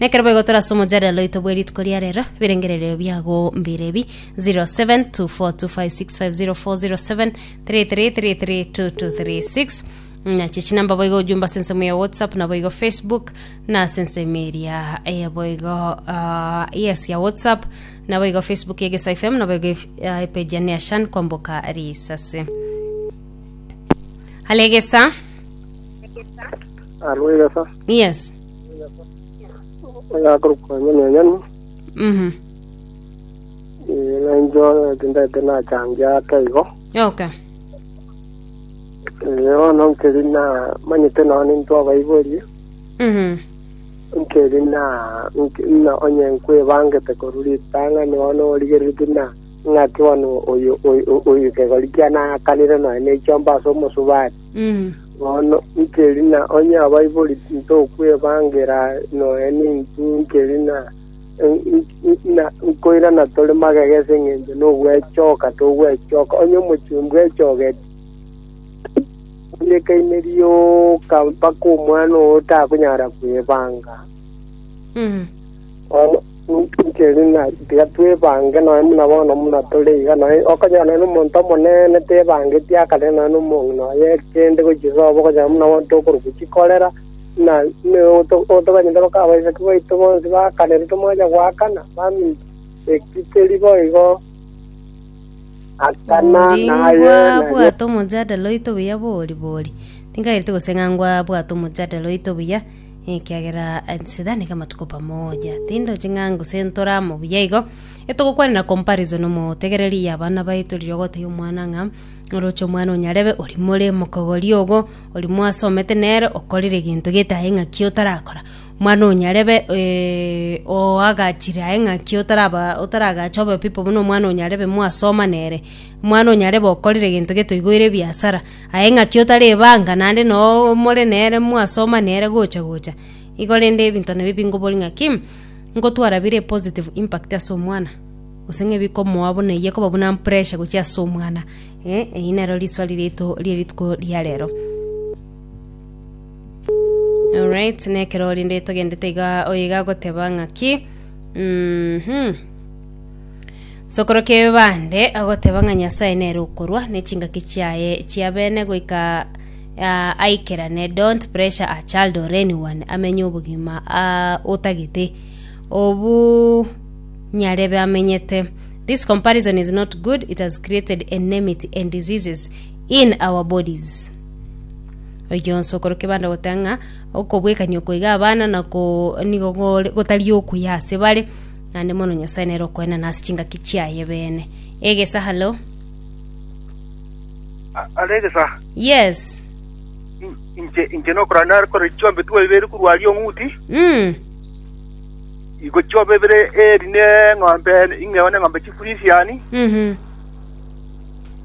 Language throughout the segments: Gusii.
Nekero boigo tore ase omochadera oito bwe rituko ria rero, ebirengererio biago mbire ebi, 072425565073332236 nache chinamba boigo ojumba ase ensemo ya whatsapp na boigo facebook na ase ensemo eria eh, boigo ah, yes ya whatsapp na boigo facebook ya egesa fm na boigo ah, epeji ya neashan kwamboka risase alegesa Alo egesa yes oyakorokwa nyoni enyoni Mhm. eh, ng'a incho tindete nachangia ake igo Oka. Eh, bono nkeri na manyete nao ninto abaiborie Mhm. nkeri na nk- na onye nkwebangete korwa ritang'ani bono origereti na ng'aki bono oyo oyo- oyo kegori kiane akanire noe naichomba ase omosubati Bono nkerina onye abaibori tintokwebaangera nonya nintwe nkerina, na nkoirana tore magega ase engencho nogwechoka togwechoka. Onye omochenu bwechogeti, ekaine rioka mpaka omwana oo otakonyara kwebaanga. Bono inchera ng'a tiga twebange nonya buna bono buna tore iga, nonya okonyora nonya omonto omonene tebangetie akarera nonya na omong'ina oye kende gochia sobo, okonyora buna bono tokorokwa chikorera, buna buna oto otoganyete boka abaiseke baito bonsi bakanere tomwachia goakana, baminto eki keri bo igo. Akana naye Ndingwa naria bwate omojadala oito buya bori bori. Tingaereti gose ng'a ngwa bwate omojadala oito buya. Ekiagera Sitani kamatukopa moja, tindoche ng'a gose ntore amo buya igo, etogokwanera comparison omotegereri ya abana baito riria ogotebia omwana ng'a oroche omwana onyarebe ori more mokogori ogo, ori mwasomete nere okorire egento gete aye ng'aki otarakora. Omwana onyarebe oagachire aye ng'aki otaraba otaragache obe pipo buna omwana onyarebe mwasoma nere. Omwana onyarebe okorire egento gete oigoire ebiasara, Aye ng'aki otari ebanga, naende noo more nere mwasoma nere gocha gocha, igo rende ebinto nabio bingobori ng'aki, ngotwara bire epositive impact ase omwana, gose ng'a bikomoa buna eye ekoba buna pressure gochia ase omwana, eh, eyio nero riswali riaito ria rituko ria rero. Alright, na ekero rende togendete igaa oyo iga agoteba ng'aki, mhm. Sokoro kebande agoteba ng'a Nyasae nere okorwa ne chingaki chiaye chia bene goika ah, aikerane don't pressure a child or anyone amenye obogima ah, otagete obu nyarebe amenyete this comparison is not good it has created enmity and diseases in our bodies oyio nsokoro kebanda goteba ng'a okobwekania okoiga abana nako nigo gore- gotari okuya ase bare Naende mono Nyasae nere okoenana ase chingaki chiaye beene. Egesa, hallo? A- Are egesa. Yes. In- Inche inche nokora nare kore chiombe twa ibere korwa aria ong'uti. Mm. Igo chiombe ibere eri ne ng'ombe ing'eo ne ng'ombe chifurisiani. Mhm.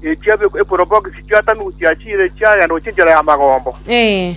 Echia eporobogisi chiatamigwa chiachire chiagenda gochia enchera ya magombo. Eh.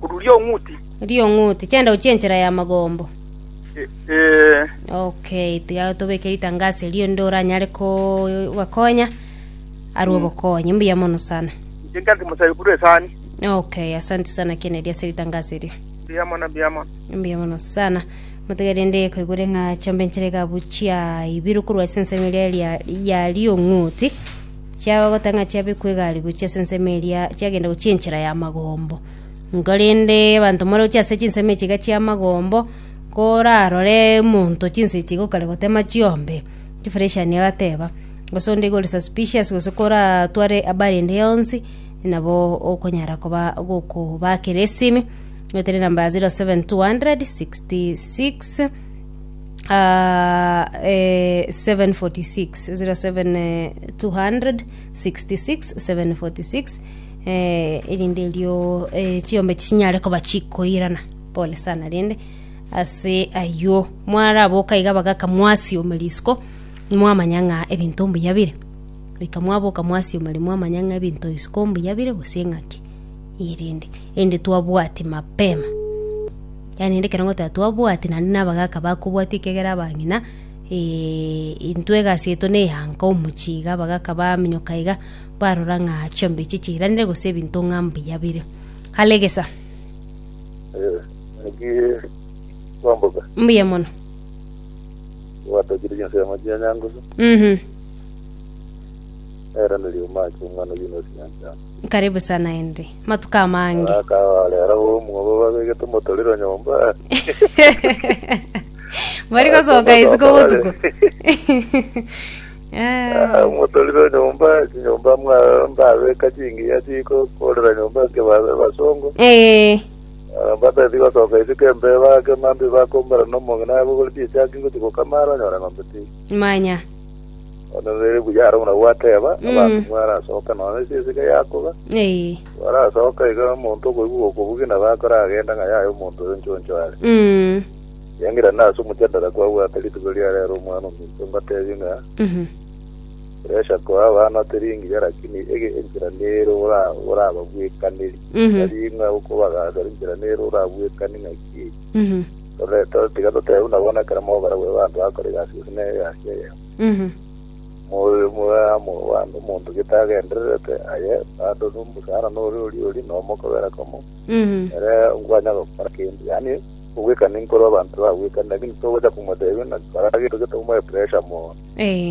Korwa Riong'uti. Riong'uti, chanda ochie enchera ya magombo. Ee. Okay, tiga tobeke ritangaso erio onde oranyare ko- bakonya arwe obokonyi. Mbuya mono sana. Inche nkanti mosabe korwa esani. Okay, asante sana Kennedy ase ritangaso erio. Mbuya mono, mbuya mono. Mbuya mono sana. Motiga rende koigure ng'a chombe enchera egabu chiaibiru korwa ase ensemo eria ria- ya Riong'uti. Chiagogota ng'a chiabekwa egari gochia ase ensemo eria, chiagenda gochia enchera y'amagombo. Nkorende abanto more gochia ase chinsemo echi iga chi'amagombo, korarore omonto chinsa echi iga okare gotema chiombe, chifureshani agateba, gose onde iga ore suspicious gose koratware abari ende yonsi, nabo okonyara koba gokobakera esimi, goetera enamba ya zero seven two hundred sixty six. ah, eh, 746 07 eh, 266 746 eh, erinde erio eh, chiombe chinyare koba chikoirana pole sana rende ase aywo mwaraboka iga bagaka mwasioma risiko mwamanya ng'a ebinto mbuya bire goika mwaboka mwasioma ri mwamanya ng'a ebinto isiko mbuya bire gose ng'aki erinde erinde twabwati mapema Naende ekero ngotea twabwati naende nabagaka bakobwatia ekiagera abang'ina, intwe egasi yaito neyanka omochie iga abagaka baminyoka iga, barora ng'a chiongo echi chiiranire gose ebinto ng'a mbuya bire. Kalegesa. Naki kwamboka Mbuya mono. gwatokire chinsemo chia Nyangusu Mhm. eraneri omake omwana oyio nosinyanchama. Karibu sana Henry. Matuko amange. Bakaba rero bomwabo babegete omotorero nyomba. Bari gosoka isiko botuko. Ah, Eh, Omotorero nyomba, chinyomba mwa mbabeka chingiya chikokorera nyomba ake babe basongo. eh, Batati gosoka isiko embe bake mambi bakombera nomong'ina yabo gore chichaki gochi gokamara onyore ng'ombe ti. manya. Onyorere buya aro buna gwateba, abanto barasoka nonya ase esike yakoba, Eh. barasoka iga omonto okoigwa gokobugina bakoragenda ng'a yaya omonto oyo nchoncho are. Mm. Riangera nase omochandara kwabwate rituko riare aro omwana ominto mbatebie ng'a Mhm. Puresha koa abana teri engiya lakini ege enchera nere ora- orababwekaneri. Mhm. Tari ng'a okobagacha enchera nere orabwekani ng'aki Mhm. tore- tore- tiga totebe buna bono ekero mobarabwo abanto bakora egasi gose ne egasi eyemo. Moe amo bande omonto gete agendererete aye bande ore omosara nore oriori na omokogera komo ere nkwanya gokora kende yaani ogwekana inkoro abanto bagwekana lakini togocha komotebia ng'a kora gento getomoe pressure mono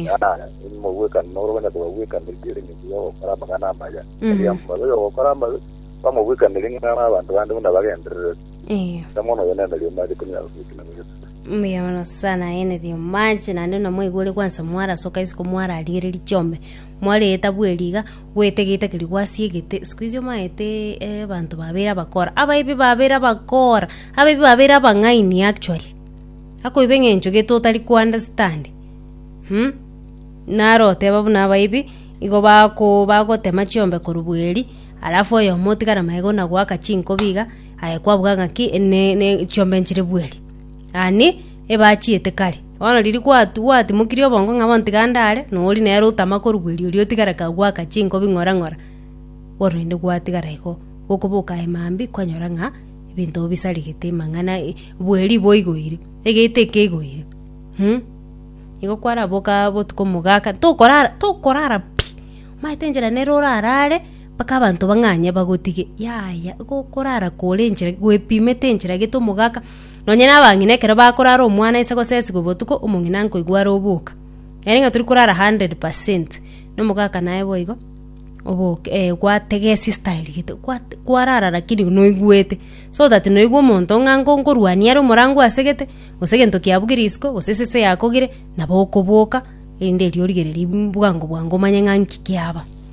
yaani mogwekana noro onya kobagwekana riria ere ng'encho yogokora amang'ana amaya tari amabe oyo ogokora amabe bamogwekanere ng'a abanto bande buna bagendererete mono oyo nere riomare konya goika na goika Mbuya bono Nyasae naenete omoache, naende buna mwaigwire gwansa mwarasoka isiko mwararigereria chiombe, mwareeta bweri iga, goeta egeita keria gwasi egete, isiko echi omaete abanto babere abakora, abaibi babere abakora, abaibi babere abang'aini actually, akoiba eng'encho gete otari ko understand, naro oteba buna abaibi, igo bako bagotema chiombe korwa bweri, alafu oyomo otigare magega buna goaka chinkobi iga. Aye kwabuga ng'aki ne, ne, chiombe nchire bweri? Ani, ebachiete kare. Bono riria gwatu, gwatimokirie obongo ng'a bontiga ndare, nori nere otama korwa bweri oria otigare kagoaka chinko bing'ora ng'ora, bono rende gwatigara igo. Gokoboka aye mambia, kwanyora ng'a ebinto bisarigete amang'ana e, bweri boigoire, egeita ekeigoire um. Igo kwaraboka botuko mogaka, tokorara, tokorara pi, omanyete enchera nere orarare. Mpaka abanto bang'anye bagotige, yaya, igo okorara kore enchera gwepimete enchera gete omogaka. Nonye na abang'ina ekero bakorara omwana ase gosesigwa botuko, omong'ina nkoigwa are oboka. Nere ng'a tori korara hundred percent, na omogaka naye boigo, oboke eh gwategesie style gete gwate kwarara lakini noigwete. So that noigwe omonto ng'a nko nkorwania are omorango asegete, gose egento kiabugire isiko, gose esese yakogire, nabo okoboka, erinde erio origererie bwango bwango omanye ng'a nki kiaba.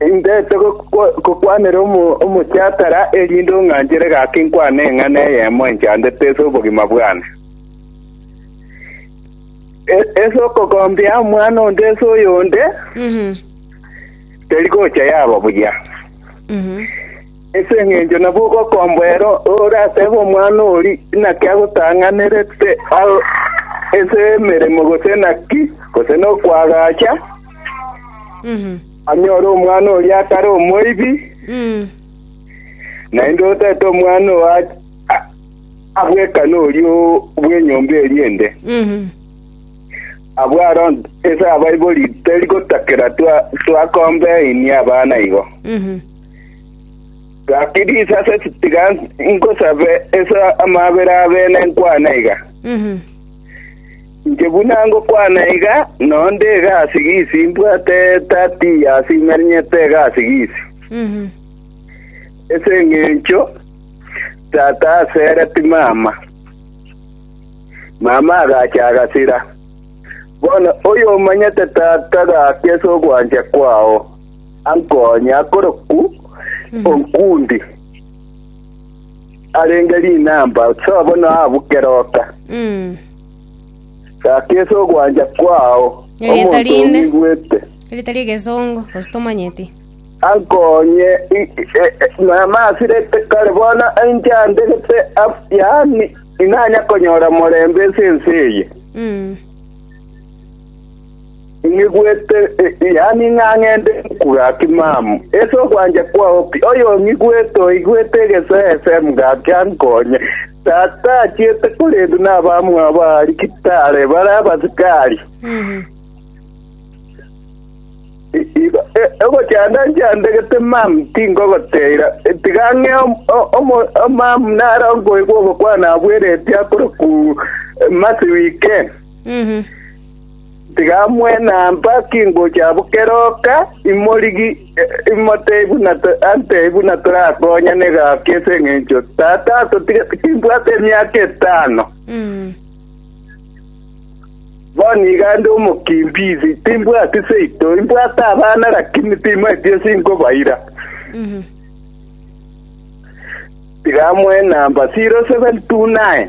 Indete gokwa- gokwanera omo- omochiatara, erinde ong'anchere gaki nkwane eng'ana eyemo enchandete ase obogima bwane. E- Ase okogombia omwana onde ase oyonde, teri gocha yaba buya. Ase engencho nabwo gokomboera ore atebe omwana oria inaki agotang'anerete ase emeremo gose naki, gose nokoagacha, anyore omwana oria atare omoibi, naende otaete omwana oo abwekane oria bw'enyomba eria ende. Abwo aro ase abaibori teri gotakera twakombainia abana igo. Gaki risase tiga ngosabe ase amaabera abene nkwane iga. Inche buna ngokwana iga, nonde egasi gisi mbwate tati yasimenyete egasi gisi. Ese engencho tata asere timama. Mama agacha agasira. Bono oyomanyete tata gaki ase ogwancha kwao. ankonye akorokwu onkundi arenge rinamba so bono abuke roka Mm. gaka ase ogwancha kwao Erieta omonto rinde. ong'igwete Erita ry'egesongo gose tomanyeti. ankonye i- e- e- mama asirete kare bono inche andegete af- yaani inanya konyora morembe ase ense eye Mm. Ing'igwete, yaani ng'a ng'ende gaki mama, ase ogwancha kwao pi. Oyong'igwete oigwete egeseese gaki ankonye. Tata achiete, korende nabamwabo aarigitare bare abasikari. Ogochanda nchandegete mama, tingogoteira, tiga ng'e mama naro nkoigwa ogokwana abweretie akore ku Mercy Wike. Tigamwenambakia ingocha abwo kera oka, imorigi, imotebie buna antebie buna torakonyane gaki ase engencho tata atotige timbwate emiaka etano. Bono iga nde omokimbizi, timbwati seito, imbwate abana lakini timaeti ase inkobaira. Tigamwenamba 079.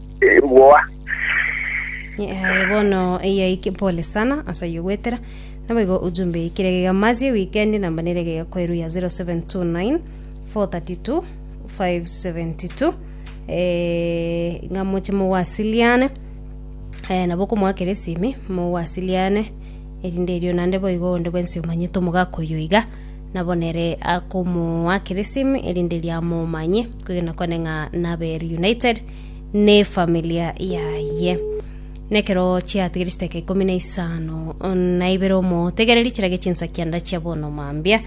Boa. Aye bono eyaike pole sana asa yogwetera naboigo ujumbe yaikire egega masi weekend namba nere egega kweru ya 0729 432 572 eh, ng'a moche mowasiliane eh, nabo okomwakera esimi mowasiliane erinde erio nande boigo onde bwensi omanyete omogaka oyo iga nabo nere akomwakera esimi erinde riamomanye kwegena kwane ng'a nabere united nefamilia yaye nekero chiatigire chiteka ikomi na isano na ibere omotegereri chirage chinsakia ndachia bono mambia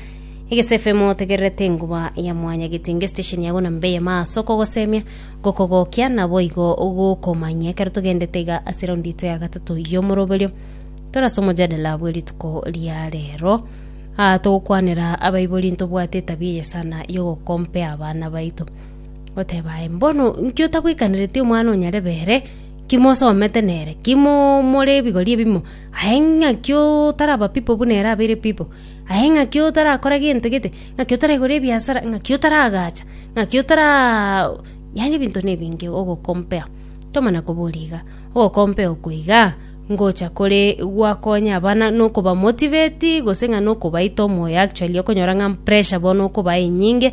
egesefe motegererete enguba ya mwanya getinge station yago na mbeye maso okogosemia gokogokia naboigo gokomanya ekero togendete iga ase raundi ito ya gatato yomoroberio torase omojadala bwerituko ria rero Ah, togokwanera abaibori ntobwate etabia eye sana yogokompea abana baito goteba aye, Mbono inki otagwekanereti omwana o nyarebe ere? Inki mosomete nere? Inki more ebigori ebimo? Aye ng'aki otaraba pipo buna ere abeire pipo? Aye ng'aki otarakora gento gete? Ng'aki otaregora ebiasara? Ng'aki otaragacha? Ng'aki otara yaani ebinto na ebinge ogokompea. Tomana koboria iga, ogokompea oko iga ngocha kore gwakonya abana na okobamotiveti gose ng'a na okobaita omoyo actually okonyora ng'a pressure bono okobae enyinge.